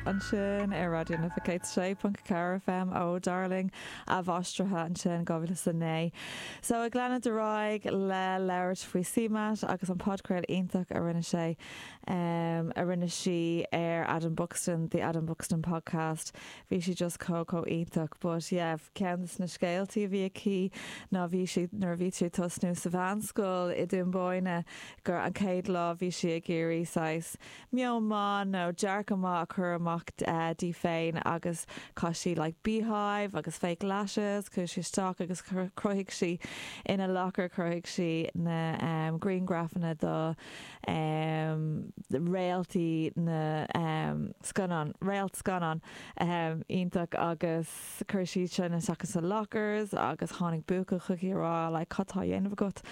ansin ar Raidió na fCit 6.4 fm ó Darling athmháistrithe ansin 2009 so ag leanúint ar aghaidh le labhairt faoi CMAT agus an podchraoladh iontach a rinne sé em a rinne sí ar Adam Buxton the Adam Buxton podcast bhí sí just chomh chomh iontach but yeah ceann de na scéaltaí a bhí aici ná bhí sí nuair a bhí sí ag tosnú sa mheánscoil i nDún Búinne gur an chéad lá bhí sí ag iarraidh saghas meon maith nó dearcadh maith a chur amach di féin agus chaith sí like beehive agus fake lashes chuaigh sí isteach agus chruthaigh sí ina locker chruthaigh sí na em griangrafanna do em réaltaí na em scannán réalt scannán em iontach agus chuir sí iad sin isteach sa lockers agus tháinig buachaill chuici a rá like cad tá á dhéanamh agat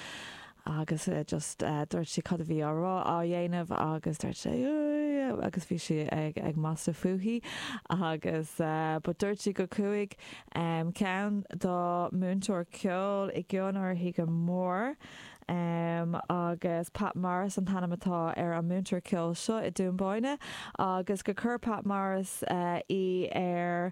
agus just dúirt sí cad a bhí á rá á dhéanamh agus dúirt sé yeah agus bhí sí ag ag magadh fúithi agus but dúirt sí go chuaigh em ceann dá múinteoir ceoil i gcionn uirthi go mór em agus Pat Morris an t-ainm atá ar an múinteoir ceoil seo i nDún Búinne agus gur chuir Pat Morris eh í ar eh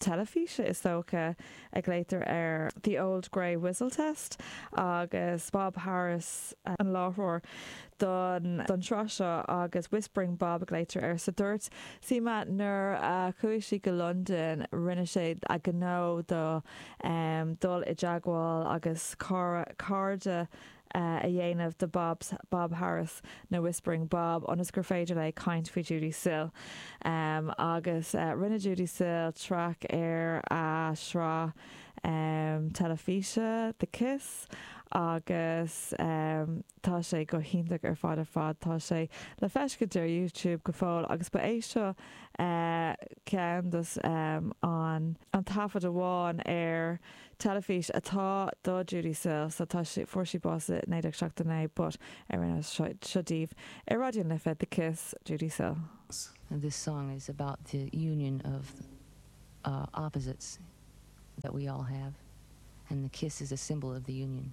teilifíse is dócha a glaotar air The Old Grey Whistle Test agus Bob Harris an láithreoir don tsraith seo agus Whispering Bob a glaotar air so dúirt CMAT nuair a chuaigh sí go Londain rinne sí a gnó de dul i dteagmháil agus cairde a dhéanamh de Bob Bob Harris nó Whispering Bob ionas gur féidir léi caint faoi Judee Sill. Agus rinne Judee Sill traic ar an sraith teilifíse The Kiss agus tá sé go hiontach ar fad ar fad. Tá sé le feiscint ar YouTube go fóill agus ba é seo ceann dos an taifead amháin ar teilifís atá do Judi Sale so tá sí, fuair sí bás i 1979 but ar an nós seo, seo daoibh ar Raidió na Life The Kiss, Judi Sale. S, This song is about the union of uh opposites that we all have and the kiss is a symbol of the union.